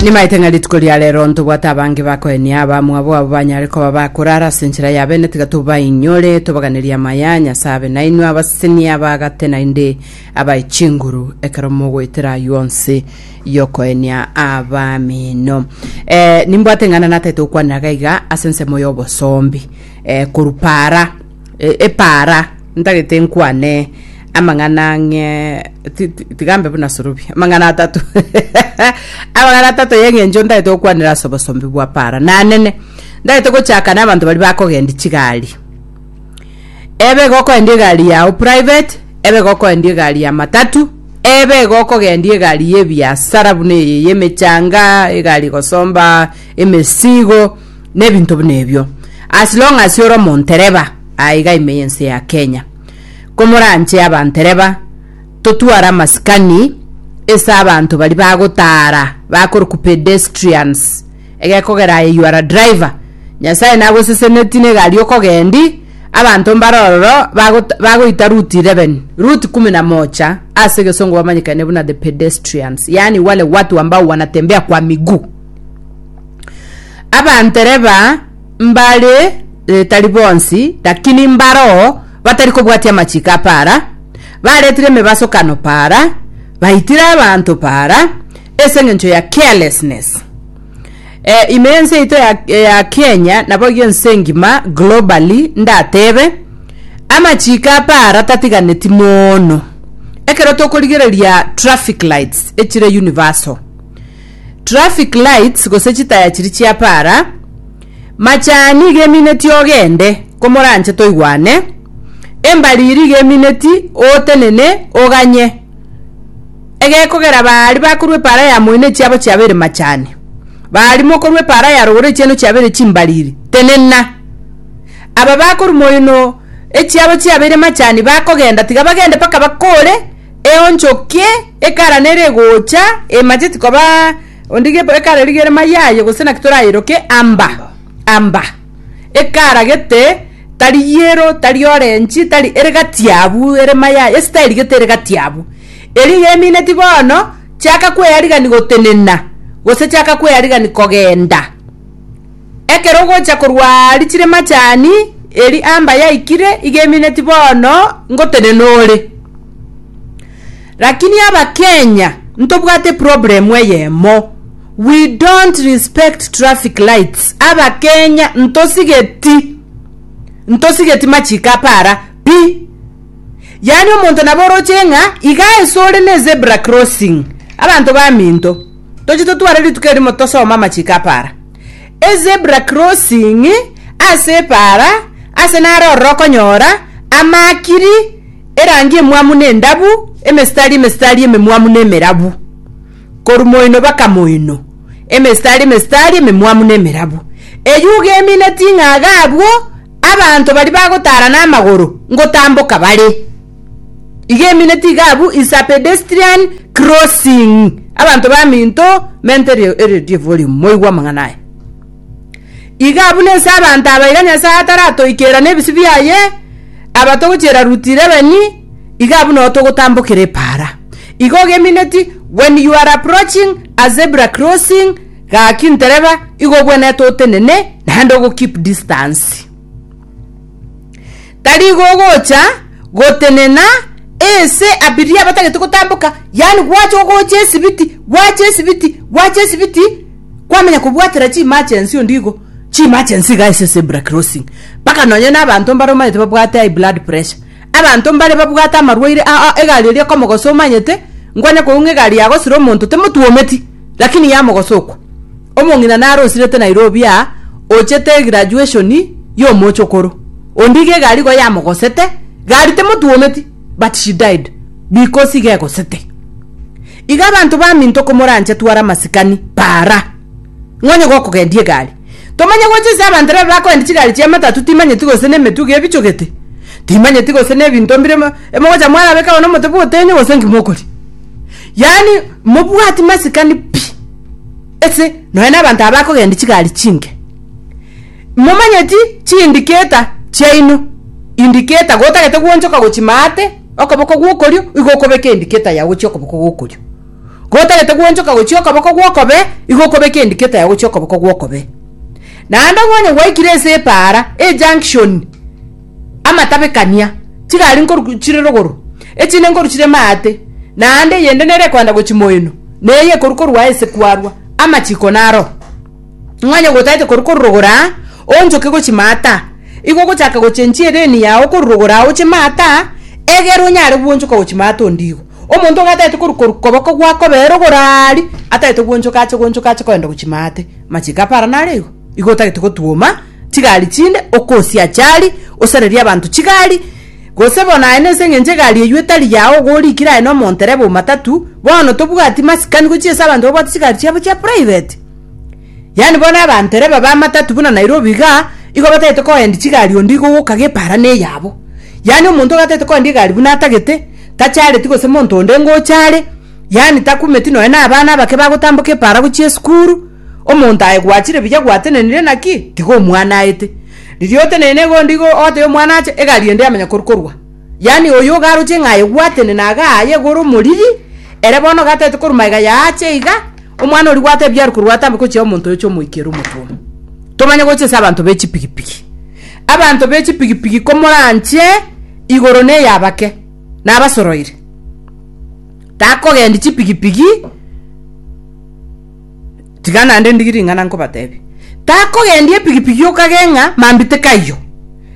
Nimaete ng'a rituko ria rero ntobwate abange bakoenia abamwabo abo banyare koba bakorara ase enchera ya bene tiga tobainyore tobaganerie amaya a Nyasae abe nainwe abaseseni abaagate naende abae chinguru ekero mogoetera aywo onsi yokoenia abamino eh, nimbwate ng'a nataete gokwanera gaiga ase ensemo y'obosombi eh, korupara e- epaara ntagete nkwane amang'ana ang'e ti- ti- tiga mbe buna sorobi amang'ana atato amang'ana atato y'eng'encho ntagete gokwanera ase obosombe bwa paara nanene ntagete gochakana abanto baria bakogenda chigari ebe iga okoenda egari yao private ebe iga okoenda egari ya matatu ebe iga okogenda egari y'ebiasara buna eye y'emechanga egari egosomba emesigo nebinto buna ebio as long as ore omontereba aiga ime yense ya Kenya komoranche abantereba totware amasikani ase abanto bari bagotara bakoroku pedestrians egekogera aye you are a driver nyasaye nagoseseneti negari okogendi abanto mbare ororo bagot bagoita root 11 root kumi na mocha ase egesongo bamanyekane buna the pedestrians yaani wale watu ambao wanatembea kwa miguu Abantereba mbare eh, tari bonsi, lakini mbaroo batari kobwatia amachiko a para, baretire emebasokano para, baitire abanto para, ase eng'encho ya carelessness. Eh, ime ense yaito ya, ya Kenya naboigo ense engima globally ndatebe amachiko apara tatiganeti mono ekero tokorigereria traffic lights echire universal Traffic lights gose chitaya chiria chia para, Machani iga emineti ogende, komoranche toigwane, Embariri iga emineti ootenene oganye. Egekogera baari bakorwa epara ya moino echiabo chiabeire machani. Baari mokorwa epara ya rogoro echieno chiabeire chimbariri, tenena. Aba bakorwa moino echiabo chiabeire machani bakogenda tiga bagende mpaka bakoore, Eonchoki ekara nere egocha, emacheti koba onde gepo ekara rigere mayaye gose naki torayeroke amba amba ekara gete tari yero tari orenchi tari ere gati abu ere mayaye esitayeri gete ere gati abu eri iga emineti bono chiaka kweyarigani gotenena gose chiaka kweyarigani kogenda Ekero ogocha korwa aa richire machani, eri amba yaikire iga emineti bono ngotenena ore. Lakini aba Kenya ntobwate problem eyemo we don't respect traffic lights aba Kenya ntosigeti ntosigeti machiko apara pi yaani omonto nabo oroche ng'a iga ase ore ne zebra crossing abanto baminto toche totware rituko erimo tosome amachiko apara. Ezebra crossing ase epaara ase naro ororo okonyora amaakiri erangi emwamu na endabu emesitari emesitari ememwamu na emerabu korwa moino baka moino emesitari emesitari ememwamu na emerabu eyio iga emineti ng'a iga abwo abanto baria bagotara namagoro ngotamboka bare. Iga emineti iga abwo is a pedestrian crossing. Abanto baminto mente eredio volume moigwe amang'ana aya. Iga abwo nense abanto aba iga Nyasae ataratoikera nebisi biaye aba togochiera route 11 iga abwo nao togotambokera epara. Iga ogemineti when you are approaching a zebra crossing gaki ntereba iga obwenerete otenene naende ogo keep distance. Tari gogocha gotenena ense abiria batagete gotamboka, yaani gwacha ogocha esibiti, gwacha esibiti, gwacha esibiti, kwamenya kobwatera chiemergency onde igo, chiemergency iga ase zebra crossing, mpaka nonye na abanto mbare omanyete babwate high blood pressure, abanto mbare babwate amarwaire a- a- egari eria ekomogosa omanyete, nkwanya koigwa ng'a egari yagosire omonto temotwometi, lakini yamogosa okwa. Omong'ina narosirete Nairobi aa ochete egraduation y'omochokoro onde iga egari igo yamogosete, gari timotwometi but she died because iga egosete. Iga abanto baminto komoranche tware amasikani para ng'a onye gokogendia egari tomanye gocha ase abanto ere bakogendia chigari chia matatu timanyeti gose nemetugi ebichogete timanyeti gose nebinto mbire emogocha mwarabeka bono omote bwotenyo gose nki mokoria yaani mobwati masikani pi. ase nonya nabanto aba bakogenda chigari chinke. Momanyeti chiindiketa chiaino, indiketa gotagete gwoonchoka gochi maate okoboko gwokorio igo okobeka endiketa yao gochia okoboko gwokorio. Gotagete gwoonchoka gochia okoboko gwokobee igo okobeka endiketa yao gochia okoboko gwokobee. Naende onye gwaikire ase epaara, ejunction, amatabekania, chigari nkoru chire rogoro, echinde nkoru chire maate, naende eyende nere ekoenda gochi moeno, na eye ekoru korwa aase kwarwa, amachiko naro. Ng'onye gotaete koru korwa rogoro aa, oonchoke gochi maate aa, igo ogochaka gochenchia ereeni yao korwa rogoro aa oche maate aa, egere onyare gwonchoka gochi maate onde igo. Omonto iga ataete koru korwa koboko gwakobee rogoro aria, ataete gwonchoka ache gwonchoka ache koenda gochi maate. Machiko apara naro igo. Igo otagete gotwoma chigari chinde okosia achari, osarerie abanto chigari, gose bono aye nense eng'encho egari eyio etari yao igo orikire aye nomonto erebe omatatu, bono tobwati masikani gochia ase abanto babwate chigari chiabo chia private. Yaani bono abanto ere babe amatatu buna Nairobi igaa, igo batagete koendia chigari onde igo ogoka gepaara neyabo. Yaani omonto iga atagete koendia egari buna atagete, tachareti gose monto onde ngocha are, yaani takumeti nonya na abana abake bagotamboka epaara gochia esukuru, Omonto aye gwachire buya gwatenenire naki tiga omwana aete. Riria oteneine igo ndigo ogotebi omwana ache egari ende yamanya kori korwa. Yaani oyo ogaroche ng'a aye gwatenena iga aye igoro omoriri ere bono iga ataete korwa magega ya ache iga omwana oria gwatebia are korwa atambe gochia omonto oyoche omoikere omotwe. Tomanye gochia ase abanto be chipigipigi. Abanto be chipigipigi komoranche igoro ne ya abake nabasoroire. Takogendi chipigipigi. Tiga naende ndigi ring'ana nkobateebie. Takogendia epigipigi okagee ng'a mambia tikaiyo.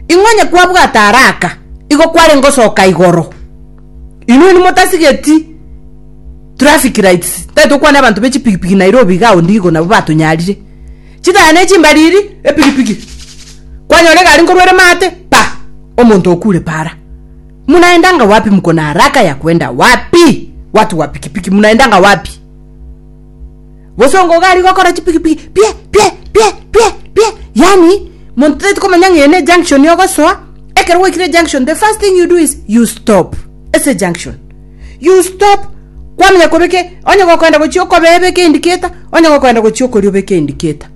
Ing'o onye kwabwate araka, igo kwarenge osoka igoro. Inwe nimotasigeti traffic lights, tari tokwane abanto be chipigipigi Nairobi iga ao ndigo nabo batonyarire. Chitaya ne chimbariri, epigipigi, kwanyora egari nkorwa ere maate, pa! Omonto okure para. Munaendanga wapi mkona araka ya kwenda wapi? Watu wa pikipiki munaendanga wapi? gose ongoga ari gokora chipigipigi pie pie pie pie pie yani monto tari komanya ng'ene ejunction ogosoa ekero gwaikire ejunction the first thing you do is you stop ase junction you stop kwamenya kobeke onye gokoenda gochia okobebeke indicator onye gokoenda gochia okoria obeke indicator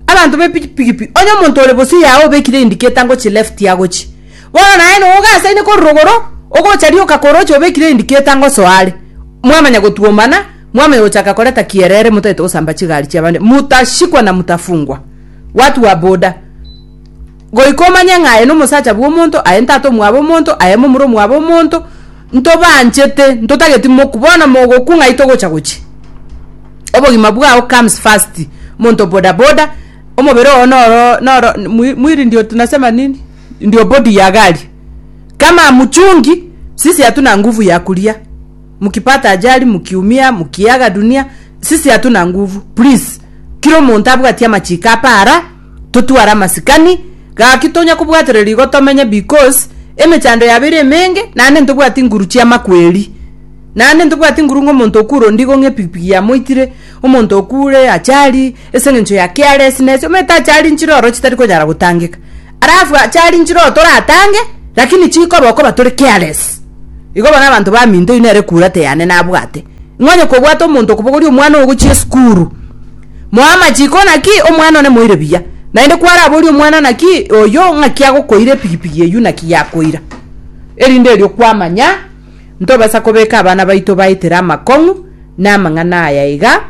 abanto be pigipigi onye omonto ore bosio yao obekire indicator ngochi left agochi bono naye no ogasaine korwa rogoro ogocha rioka koroche obekire indicator ngosoa are mwamanya gotwomana Mwami agochaka koreta kierere motagete gosamba chigari chi'abande, motashikwa na motafungwa. Watu wa boda, goika omanye ng'a aye nomosacha bw'omonto, aye ntata omwabo omonto, aye momura omwabo omonto, ntobanchete, ntotageti moku, bono mogokwa ng'ai togocha gochia? Obogima bwao comes first, monto boda boda, omobere oo noro noro mwili ndio tunasema nini? Ndio body ya gari. Kama hamuchungi, sisi hatuna nguvu ya kulia. mukipata ajali, mukiumia, mukiaga dunia, sisi hatuna nguvu please. Kira omonto abwati amachiko apa ara, totware amasikani, gaki tonya kobwatereria igo tomenye bcos emechando yabo ere emenge naende ntobwati nguru chiamakweri. Naende ntobwati nguru ng'a omonto okure ondigo ng'a epikipiki yamoitire, omonto okure achali, ase eng'encho ya carelessness, omanyete achali nchire oro chitari konyara gotangeka. Alafu achari nchiroto oratange, lakini chikoba okoba tore careless. Igo bono abanto baminto inwe ere kura teyane nabwate. Ng'onye kobwate omonto okobogoria omwana ogochia esukuru. Moe amachiko naki omwana one moire buya. Naende kwaraborie omwana naki oyio ng'aki agokoira epigipigi eyio naki yakoira. Erinde erio kwamanya ntobasa kobeka abana baito baitire amakong'u namang'ana aya iga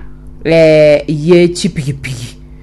eh, ye chipigipigi.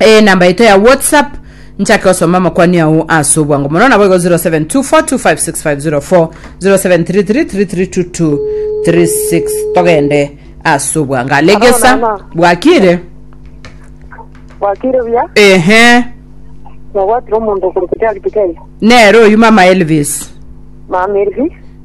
enamba yaito ya whatsapp nchake gosoma amakwani ao ase obwango mono nabo igo 0724256504 0733332236 togende ase obwango alegesa Hello, mama. bwakire Wakire buya, ehe nabwatire omonto okorokoti agitike. nero oyu mama elvis Mama Elvi,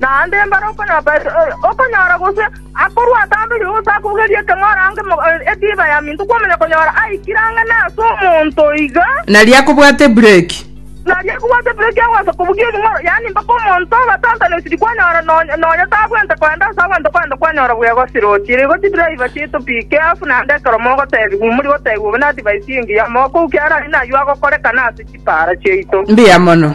Naende mbare okonyora gose akorwa atambire gose akogerie ekeng'ora ange etiba ya minto kwamanya konyora aikire ang'e nase omonto iga, Naria akobwate ebureki. naria akobwate ebureki agocha kobugia ekeng'ora, yaani mpaka omonto obatantanisiri kwanyora nonya nonya tabwente kogenda ase agwo ntokogenda kwanyora buya egosirochire. Igo chidriver chiaito pi careful naende ekero mogotebiwa imori gotebiwa obe na advice engiya mokokia arari nayio agokorekana ase chipara chiaito. Mbuya mono.